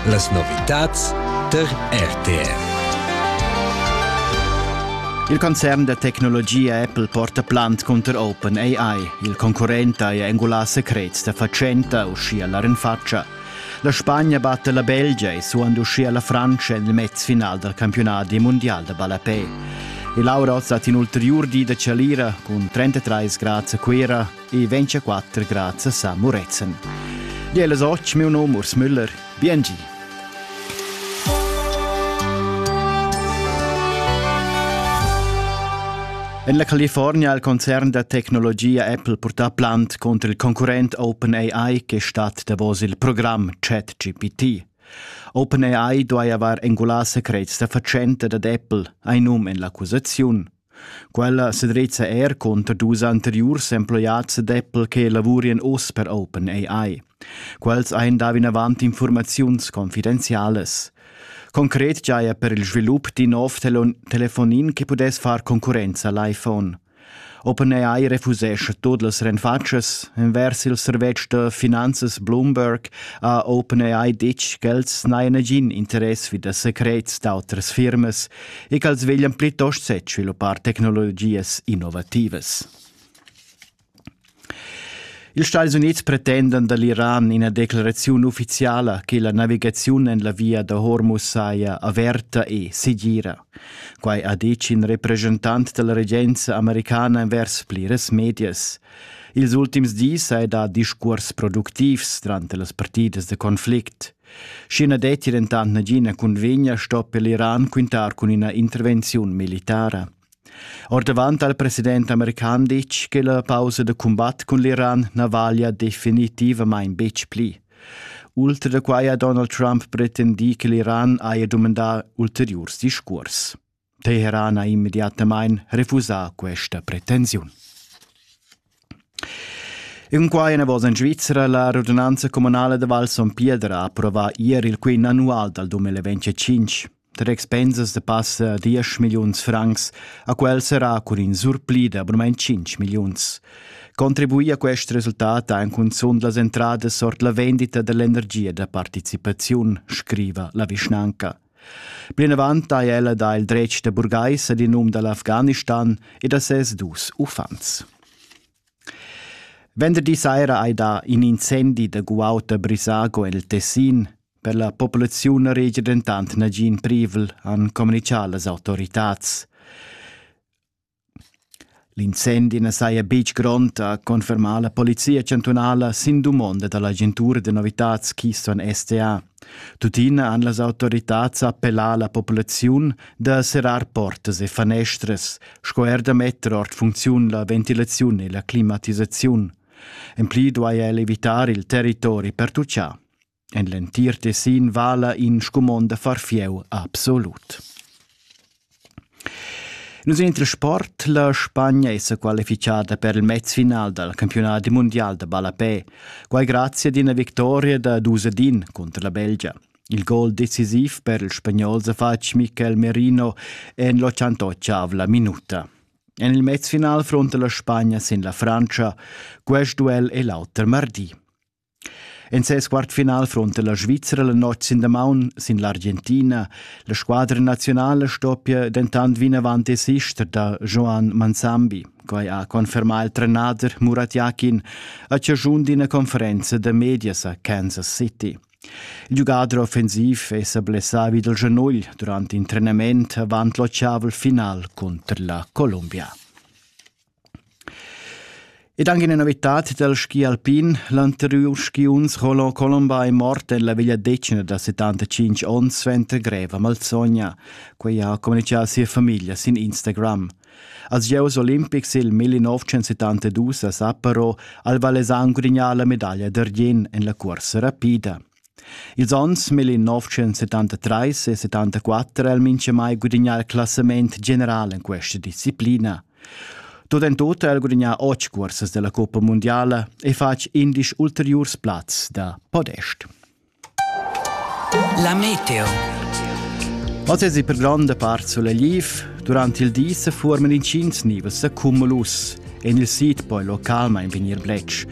Las novitads tar RTR. Il concern da tecnologia Apple porta plant cunter OpenAI. Il concurrent ha engulà secrets da fatschenta uschia la renfatscha. La Spagna batta la Belgia e suand uschia la Francia en il mezfinal dal campionadi mondial da ballapè. E Laura Oz hat in ulteriur di da chalira cun 33 grads a Cuira, e ventscha quatter grazias a Murezzan. Di alles och, meu nome Urs Müller. Biengi. En la California ha il concern da tecnologia Apple purtà plant contro il concurrent OpenAI che stat davos il program ChatGPT. OpenAI duai avair engulà secrets da fatschenta dad Apple, hai num en l'accusaziun. Quella sedrezza er cunter dus anteriurs emploiads d'Apple che lavurien oz per OpenAI. Quels ein dau vinavant informaziuns confidenzialas. Concret giaja per il svilup d'in nov telon telefonin che pudess far concurrenza al iPhone. OpenAI refusescha tut las renfatschas. Envers il servetsch da finanzas Bloomberg ha OpenAI ditg ch'els n'hajan nagin interess vi da secrets d'autras firmas e ch'als veglian plitost sviluppar tecnologias innovativas. Ils Stati Unids pretendan da l'Iran ina declaraziun uffiziala che la navigaziun en la via da Hormuz saja averta e segira. Quai ha ditg in representant della regenza americana envers pliras medias. Ils ultims dis hai dà discurs productivs durante las partidas de conflict. Schi na detti dentant nagina cunvegna sto per l'Iran quintar cun ina intervenziun militara. Ordavant al president american ditg che la pausa da cumbat cun l'Iran na vaglia definitivamain betg pli. Ultra da quai ha Donald Trump pretendì che l'Iran haja dumandà ulteriurs discurs. Teherana immediatamain refusà questa pretensiun. In quai enavos en Svizra la radunanza comunale da Val Son Piedra ha approvà ieri il quint annual dal 2025. Tre expensas da passa 10 milliuns francs a quel serà cun in surpli da abrumaint 5 milliuns. Contribuì a quest resultat ha en cunzunt las entradas ord la vendita dell'energia da participaziun, scriva la vischnanca. Plinavant ha ella dà il dretg da burgais ad in um da l'Afghanistan e da ses dus uffants. Venderdi saira hai dà in incendi da guaud a Brisago el Tessin. Per la populaziun na regia dentant nagin privel, han communitgà las autoritads. L'incendi na saja betg grond, ha confermà la polizia chantunala sin dumonda da l'agentura da novitads Keystone SA. Tuttina han las autoritads appellà la populaziun da serrar portas e fanestras, sco er da metter ord funcziun la ventilaziun e la climatisaziun. En pli duaja el evitar il territori pertutgà. En l'entir Tessin vala in scumond da far fieu absolut. Nus Intersport la Spagna è qualificada per il mezfinal dal campionat mondial da ballapè, quai grazie ad una vittoria da Dusedin contro la Belgia. Il gol decisiv per il spagnol Zafacc Mikel Merino en l'88 minuta. En il mezfinal fronta la Spagna sin la Francia. Quest duel è l'auter mardi. En ses quart final fronta la Svizra la notg sin damaun sin l'Argentina. La squadra nazionala stoppia dentant vinavant desister da Joan Manzambi. Quai ha confermà il trenader Murat Yakin a chaschun d'ina conferenza da medias a Kansas City. Il giugador offensiv è sa blessà vid il genugl durant in trenament avant l'otgavel final cunter la Columbia. Ed anche una novità dal ski alpin. L'anterior skiunz Roland Colomba è morto en la vegliadetgna da 75 onns suenter greva malsogna. Quei ha communicato sia famiglia sin Instagram. Als Gieus Olimpics il 1972 a Sapporo al Valesan gudignà la medaglia d'argien en la corsa rapida. Ils onns 1973 e 74 ha el minchamai gudagnà il classament general in questa disciplina. Tot en tot ha el gudagnà otg cursas della Coppa Mondiala e fatg indisch ulteriurs plazs da podest. La meteo. Oz es per grande part solegliv, durante il di se forman incints nivels accumulus, en il sid poi localmain vegnir bletsch,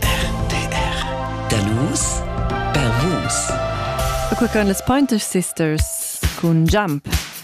RTR. Da nus per vus. E quei ein las Pointer Sisters cun Jump.